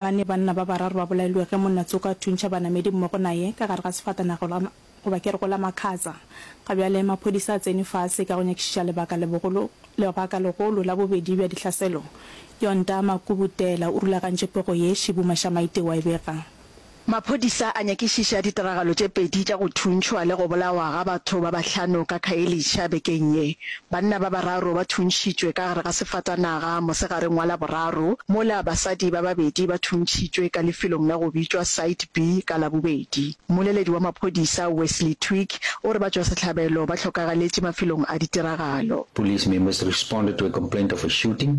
Gane banna ba bararo ba bolailwe ge monna Tsoka a thuntšha banamedi mmogo naye ka gare ga sefatanaga la, goba ke re go la Makhatsa. Ga bjale maphodisa a tsene fase ka go nyakišiša lebaka lebogolo, lebaka legolo la bobedi bja dihlaselo. Yonta Makubutela o rulagantše pego ye Shibu Mashamaite wa e bega. Maphodisa a nyakišiša ditiragalo tše pedi tša go thuntšhwa le go bolawa ga batho ba bahlano ka Khayelitsha bekeng ye. Banna ba bararo ba thuntšhitšwe ka gare ga sefatanaga mosegareng wa Laboraro, mola basadi ba babedi ba thuntšhitšwe ka lefelong la go bitšwa Site B ka Labobedi. Mmoleledi wa maphodisa, Wesley Twigg, o re batšwasehlabelo ba hlokagaletše mafelong a ditiragalo. Police members responded to a complaint of a shooting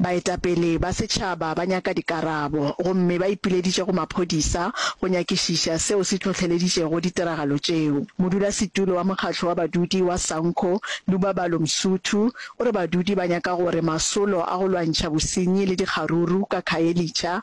Baetapele ba setšhaba ba nyaka dikarabo gomme ba ipileditše go maphodisa go nyakišiša seo se hlohleleditšego ditiragalo tšeo. Modulasetulo wa mokgatlo wa badudi wa Sanco, Lubabalo Msuthu, o re badudi ba nyaka gore masolo a go lwantšha bosenyi le dikgaruru ka Khayelitsha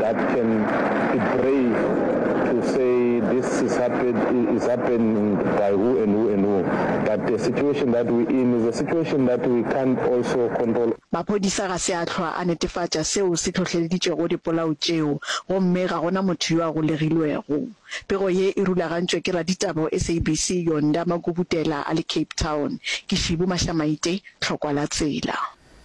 that can be brave to say this is happened is happening by who and who and who but the situation that we in is a situation that we can't also control. Maphodisa ga se a hlwa a netefatša seo se hlohleleditšego dipolao tšeo gomme ga go na motho yo a golegilwego. Pego ye e rulagantšwe ke raditaba wa SABC Yonda Magubutela a le Cape Town. Ke Shibu Mashamaite, Tlhokwa la Tsela.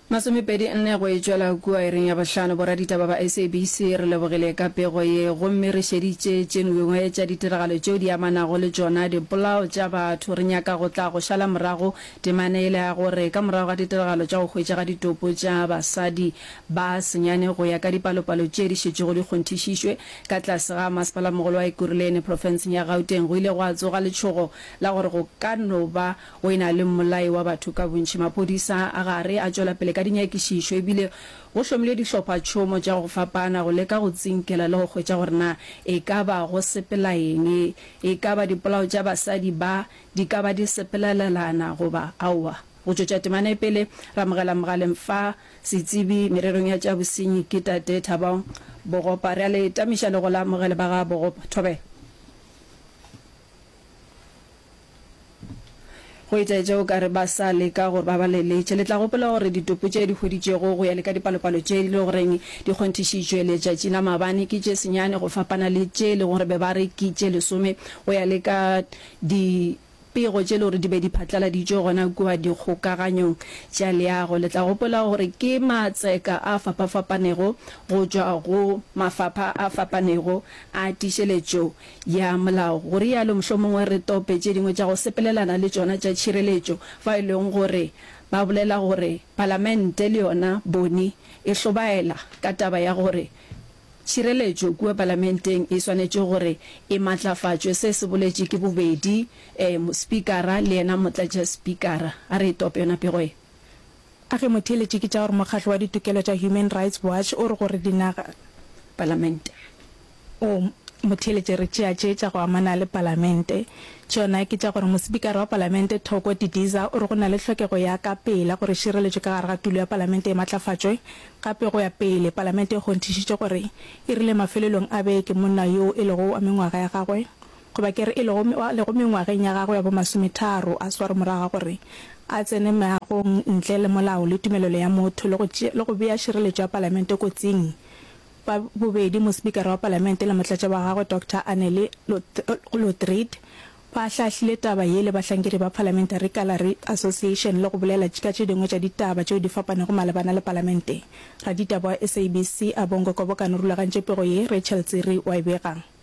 Masomepedi nne go e tšwela kua ireng ya bohlano, boraditaba ba SABC re lebogile ka pego ye gomme re šeditše tše ngwngwe tša ditiragalo tšeo di amanago le tšona dipolao tša batho. Re nyaka go tla go šala morago temana yela ya gore ka morago ga ditiragalo tša go hwetšega ditopo tša basadi ba senyane go ya ka dipalopalo tše di šetšego di kgonthišišwe ka tlase ga Masepala-mogolo wa Ekurhuleni profenseng ya Gauteng, go ile gwa tsoga letšhogo la gore go ka no ba O e na le mmolai wa batho ka bontši. Maphodisa a gare a tšwela pele ka dinyakišišo e bile go hlomilwe dihlophatšhomo tša go fapana go leka go tsinkela le go hwetša gore na e ka ba go sepela eng, e ka ba dipolao tša basadi ba di ka ba di sepelelelana goba aowa. Go tšwetša temana e pele, re amogela mogaleng fa setsebi mererong ya tša bosenyi ke Tate Thabong Bogopa. Re a le tamiša le go la amogele ba ga Bogopa. Thobela. Go itaetša o ka re ba sa leka gore ba ba leletše. Le tla gopola gore ditopo tše di hweditšwego go ya le ka dipalopalo tše di lego goreng di kgonthišitšwe letšatši la maabane ke tše senyane go fapana le tše e lego gore be ba re ke tše lesome go ya le ka dipego tše e lego gore di be di phatlaladitšwe gona kua dikgokaganyong tša leago. Le tla gopola gore ke matseka a fapafapanego go tšwa go mafapha a fapanego a tiišeletšo Ya molao, go rialo, mohlomongwe re tope tše dingwe tša go sepelelana le tšona tša tšhireletšo, fa e lego gore ba bolela gore Palamente le yona bone e hlobaela ka taba ya gore tšhireletšo kua Palamenteng e swanetše gore e matlafatšwe. Se se boletše ke bobedi Spikara le yena Motlatšaspikara. A re e tope yona pego ye. A ge motheeletši ke tša gore mokgatlo wa ditokelo tša Human Rights Watch o re gore dinaga. Palamente. O motheeletše re tšea tše tša go amana le Palamente. Tšona ke tša gore Mosipikara wa Palamente Thoko Didiza o re go na le hlokego ya ka pela gore šireletšo ka gare ga tulo ya Palamente e matlafatšwe gape go ya pele. Palamente e kgonthišitše gore e rile mafelelong a beke monna yoo e lego wa mengwaga ya gagwe goba ke re e lego, a lego mengwageng ya gagwe ya bomasometharo, a swarwe morago ga gore a tsene meagong ntle le molao le tumelelo ya motho le go, le go bea šireletšo ya Palamente kotsing. Ba bobedi, Mospikara wa Palamente le motlatša wa gagwe, Doctor Anneli Lotriet, ba ahlaahlile taba ye le bahlankedi ba Parliamentary Gallery Association le go bolela ka tše dingwe tša ditaba tšeo di fapanego malebana le Palamente. Raditaba wa SABC a Bongo Kobokano rulagantše pego ye, Rachel Tsiri wa e bega.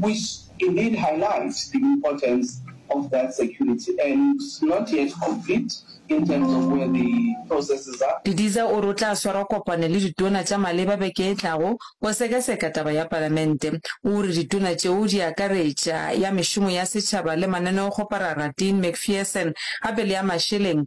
which indeed highlights the importance of that security and it's not yet complete in terms of where the processes are. Didiza o re o tla swara kopano le ditona tša maleba beke e tlago go sekaseka taba ya palamente. O re ditona tšeo di akaretša ya mešomo ya setšhaba le mananeokgoparara Dean McPherson gape le ya mašeleng.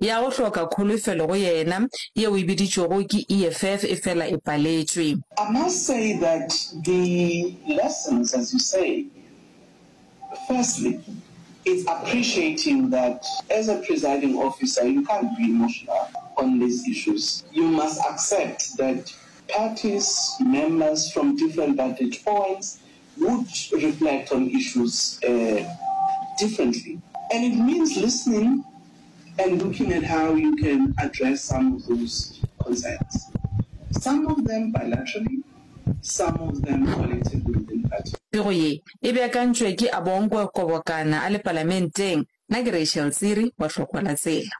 ya go hloka kholofelo go yena, yeo e biditšwego ke EFF, e fela e paletšwe. I must say that the lessons as you say, firstly it's appreciating that as a presiding officer you can't be emotional on these issues, you must accept that parties, members from different vantage points would reflect on issues differently and it means listening and looking at how you can address some of those concerns, some of them bilaterally, some of them collectively within party. Pego ye e beakantšwe ke Abongwe Kobokana a le Palamenteng. Nna ke Rachel Tsiri wa Hlokoalatsela.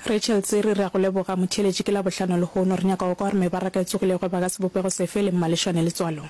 Rachel Tsiri, Re a go leboga. Motheeletši, ke Labohlano lehono. Re nyaka go kwa gore mebaraka e tsogilego e baka sebopego sefe le mmalešwane letswalong.